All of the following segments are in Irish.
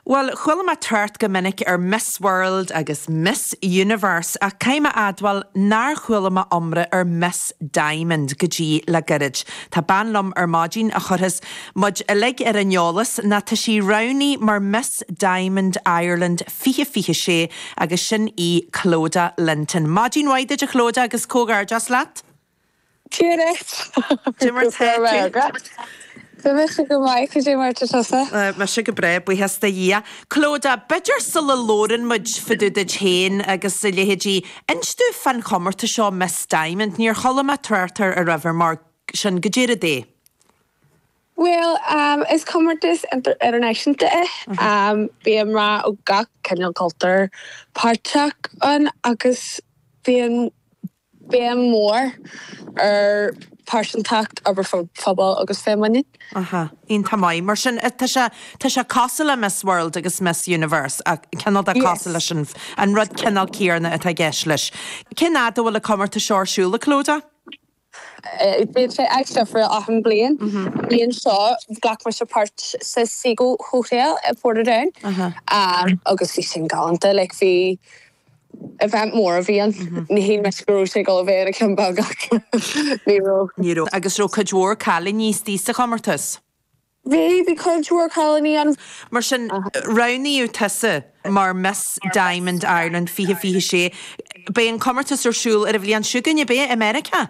Bhuel, chuala mé trácht go minic ar Miss World agus Miss Universe ach caithfidh mé admháil nár chuala mé iomrá ar Miss Diamond go dtí le gairid. Tá bean liom ar maidin a chuirfeas muid uilig ar an eolas nó tá sí roghnaithe mar Miss Diamond Ireland fiche fiche sé agus sin í Clodagh Linton. Maidin mhaith duit a Chlodagh agus comhghairdeas leat! Ciarraidhe. D'imir Go breá Turkey. agat. Go miste go maith. Cad é mar tá tusa? Mise go breá, buíochas do Dhia. Clodagh, b'fhéidir sula labhrann muid fá dtaobh duit féin agus a leithéidí, inis dúinn fán chomórtas seo Miss Diamond. Níor chuala mé trácht air ariamh mar sin. Goidé an rud é. Bhuel, is comórtas idirnáisiúnta é. Bíonn mná ó gach cineál cultúir páirteach ann agus bíonn. béim mhór ar phearsantacht, obair phobail agus féinmhuinín. Aha. Iontach maith. Mar sin, tá sé, tá sé cosúil le Miss World agus Miss Universe, ach cineál de cosúil Yes. leis an, an rud cineál céarna atá i gceist leis. Cén áit a bhfuil an comórtas seo ar siúl, a Clodagh? Bíonn sé áit difriúil achan bliain. Bliain seo, ghlac mise páirt sa Seagoe Hotel i Portadown agus bhí sin galánta. Like bhí. event mór a bhí ann. Ní shíl mé go raibh sé go bhéir ina cheann beag ní raibh. Ní raibh agus raibh cuid mhór cailíní istigh sa chomórtas. Bhí, bhí cuid mhór cailíní ann. Mar sin, roghnaíodh tusa mar Miss Diamond Ireland 2026. Beidh an comórtas ar siúl ar an bhliain seo chugainn, beidh, i Meiriceá.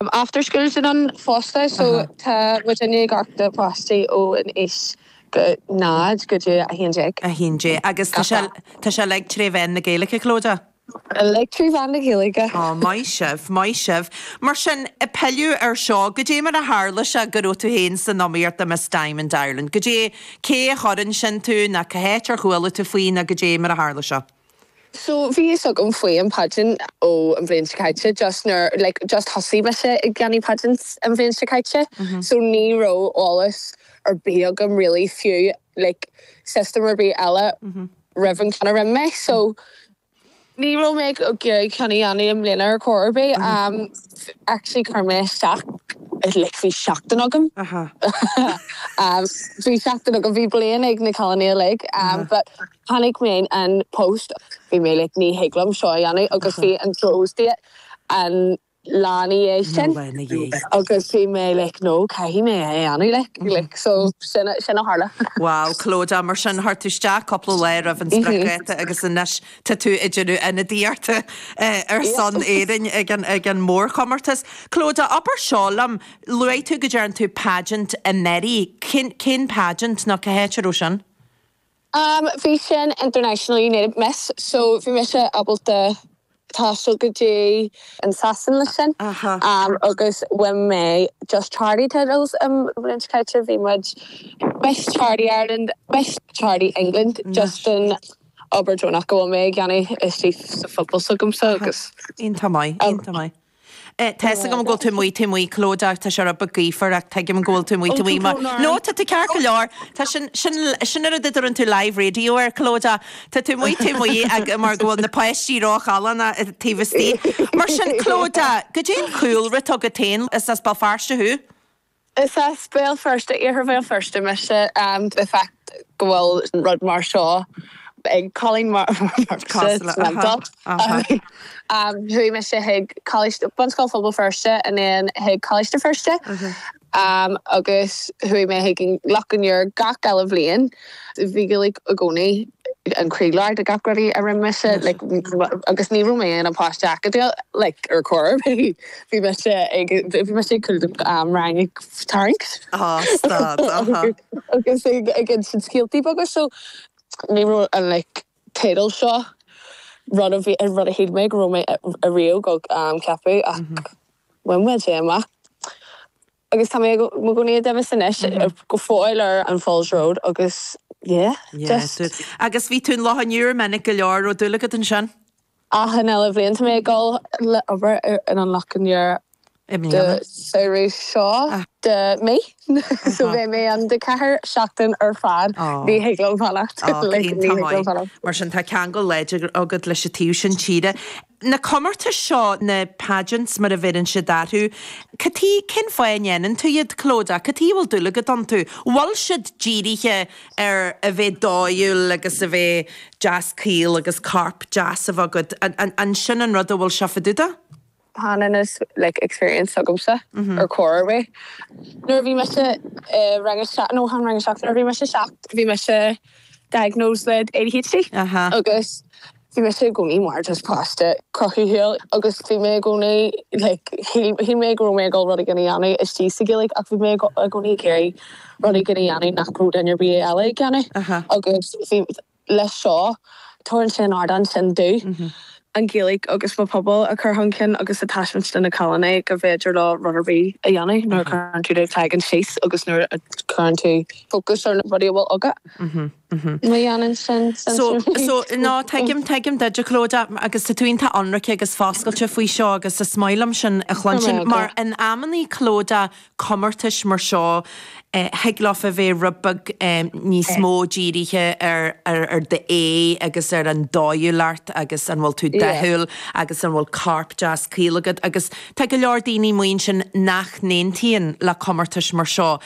Am after school sin ann fosta so tá muidinne ag amharc na páistí ó an aois go 0 go dtí 11. 11. Agus tá sé tá sé uilig tré mheán na Gaeilge, Clodagh? Uilig trí mheán na Gaeilge. Ó maith sibh, maith sibh. Mar sin, ag pilleadh ar seo, goidé mar a tharla sé go raibh tú féin san iomaíocht do Miss Diamond Ireland? Goidé, cé a chuir ansin tú ná cá háit ar chuala tú faoi ná goidé mar a tharla sé? So bhí fhios agam faoi an pageant ó an bhliain seo caite just nuair like just thosaigh mise ag déanamh pageants an bhliain seo caite so ní raibh eolas ar bith agam really faoi like system ar bith eile roimh an ceann a rinne mé so ní raibh mé ag iarraidh ceann a dhéanamh i mbliana ar chor ar bith am actually chuir mé isteach like bhí seachtain agam am bhí seachtain agam bhí bliain ag na cailíní uilig am but Chonaic mé an post ach bhí mé like ní thig liom seo a dhéanamh agus bhí an closing date an lá ina dhiaidh sin agus bhí mé like no caithfidh mé é a dhéanamh like like so sin a sin a tharla. Wow, Clodagh, mar sin chuir tú isteach cúpla lá roimh an spriocdháta agus anois tá tú ag déanamh ionadaíochta ar son Éirinn ag an ag an mórchomórtas. Clodagh, abair seo liom, luaigh tú go ndearna tú pageant anuraidh, cén cén pageant nó cé háit a raibh sin? Am bhí sin International United Miss so bhí mise ábalta taisteal go dtí an Sasain leis sin agus ba é just charity titles i roinnt cainte, bhí muid miss charity Ireland, miss charity England just don obair deonach go bhfuil mé ag dhéanamh istigh sa phobal s'agamsa agus. Iontach maith, iontach maith. Tá fhios agam go bhfuil tú amuigh, taobh amuigh, Clodagh, tá sé rud beag gaofar ach tuigim go bhfuil tú amuigh, taobh amuigh mar, no, tá tú ceart go leor, tá sin, sin, sin an rud a dtugann tú live radio air, Clodagh, tá tú amuigh, taobh amuigh ag, mar go bhfuil na páistí ró-challánach taobh istigh. Mar sin, Clodagh, cad é an cúlra atá agat féin, is as Béal Feirste thú? Is as Béal Feirste, Iarthar Bhéal Feirste mise. An fact go bhfuil rud mar seo ag cailín mar Chuaigh mise chuig Coláiste, Bunscoil Phobal Feirste and then chuig Coláiste Feirste agus chuaigh mé chuig an Loch an Iúir gach uile bhliain. Bhí Gaeilge i gcónaí. an croílár de gach rud a rinne mise agus ní raibh mé i mo pháiste acadúil ar chor ar bith. Bhí mise ag tarraingt gan stad agus ag insint scéaltaí beaga so ní raibh an teideal seo rud a bhí, rud a shíl mé go raibh mé riamh ag ceapadh ach bhain mé amach. Agus tá mé i mo chónaí i nDuibhis anois, go fóill ar an Falls Road agus yeah, just. Yeah, agus bhí tú in Loch an Iúir minic go leor, raibh dúil agat ansin? Achan uile bhliain tá mé ag dul le obair in an Loch an Iúir deireadh seo den mhí, so bheidh mé ann do ceathair seachtain ar fad, ní thig liom fanacht. Mar sin tá ceangal láidir agat leis an taobh sin tíre. na comórtais seo, na pageants mar a bheireann siad orthu, cad tuige, cén fáth a ndéanann tú iad, Clodagh? Cad tuige a bhfuil dúil agat iontu? Bhfuil siad dírithe ar a bheith dóighiúil agus a bheith deas caol agus corp deas a bheith agat? An sin an rud a bhfuil seo fá dtaobh de? Ní i mo like experience agamsa ar chor ar bith. Nuair a bhí mise i rang a seacht, no chan rang a seacht, nuair a bhí mise seacht bhí mise diagnosed le ADHD. Aha. Agus. Bhí mise i gcónaí mar, just páiste cruthaitheach agus bhí mé i gcónaí, like, shíl, shíl mé go raibh mé ag dul rud éigin a dhéanamh istigh sa Ghaeilge ach bhí mé i gcónaí ag iarraidh rud éigin a dhéanamh nach raibh duine ar bith eile ag déanamh agus bhí, leis seo, tabharann sé an ardán sin domh, an Ghaeilge agus mo phobal a chur chun cinn agus a thaispeáint do na cailíní go bhféidir leo rud ar bith a dhéanamh nuair a chuireann tú do chloigeann síos agus nuair a chuireann tú fócas ar na rudaí a bhfuil agat. Má dhéanann sin sense. So, ná tuigim, tuigim duid, a Clodagh, agus tá tú iontach ionraic agus foscailte faoi seo agus is maith liom sin a chluinstin mar in amannaí, Clodagh, comórtais mar seo, thig leofa a bheith rud beag níos mó dírithe ar, ar, ar d'aghaidh agus ar an dóighiúlacht agus an bhfuil tú dathúil agus an bhfuil corp deas caol agat agus tá go leor daoine amuigh ansin nach n-aontaíonn le comórtais mar seo.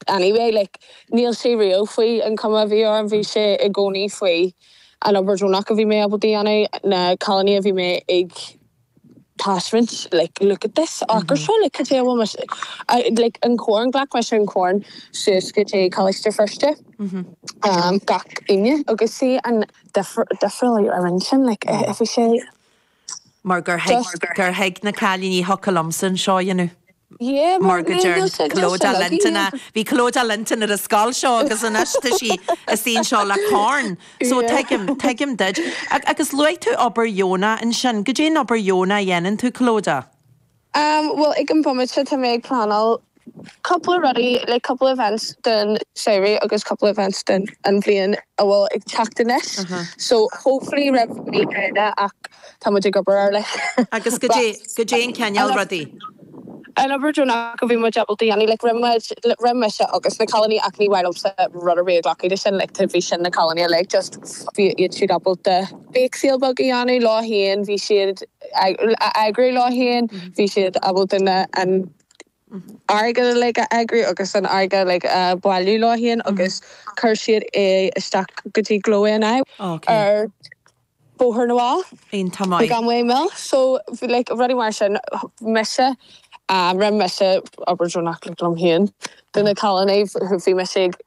But anyway, like, níl sé really faoi an cuma a bhí orm, bhí sé i gcónaí faoi an obair deonach a bhí mé ábalta a dhéanamh, na cailíní a bhí mé ag taispeáint, like, look at this acra seo, like, cad é a bhfuil mise a, like, an corn, ghlac mise an corn suas go dtí Coláiste Feirste gach Aoine agus see an difir, difriúil a rinne sin, like, bhí sé. mar gur Just. thuig na cailíní thiocfadh liomsa an seo a dhéanamh. Yeah, mar mar go yeah, deireann just said just said Clodagh like Linton a yeah, bhí Clodagh Linton ar an scoil seo agus anois tá sí i suí anseo le corn so yeah. tuigim, tuigim duid. Agus luaigh tú obair dheonach ansin, goidé an obair dheonach a dhéanann tú Clodagh? Am, bhuel, ag an bomaite tá mé ag pleanáil cúpla rudaí, like cúpla events don samhradh agus cúpla events don an bhliain a bhfuil ag teacht anois, so hopefully roimh mí Eanáir ach tá muid ag obair ar like Agus goidé, rás goidé an cineál rudaí? an obair deonach a bhí muid ábalta a dhéanamh, like rinne muid, rinne mise agus na cailíní ach ní mhaith liomsa rud ar bith a ghlacadh de sin, like tá, bhí sin na cailíní uilig just bhí iad siúd ábalta, Bake sale beag a dhéanamh leo féin, bhí siad a eagrú leo féin, bhí siad ábalta an airgead uilig a eagrú agus an airgead uilig a bhailiú leo féin agus chuir siad é isteach go dtí Glór na Móna ar Bhóthar na bhFál. Iontach maith. Gan mhoill. So like rudaí mar sin. Mise, rinne mise obair deonach like liom féin. Do na cailíní, bhí mise ag.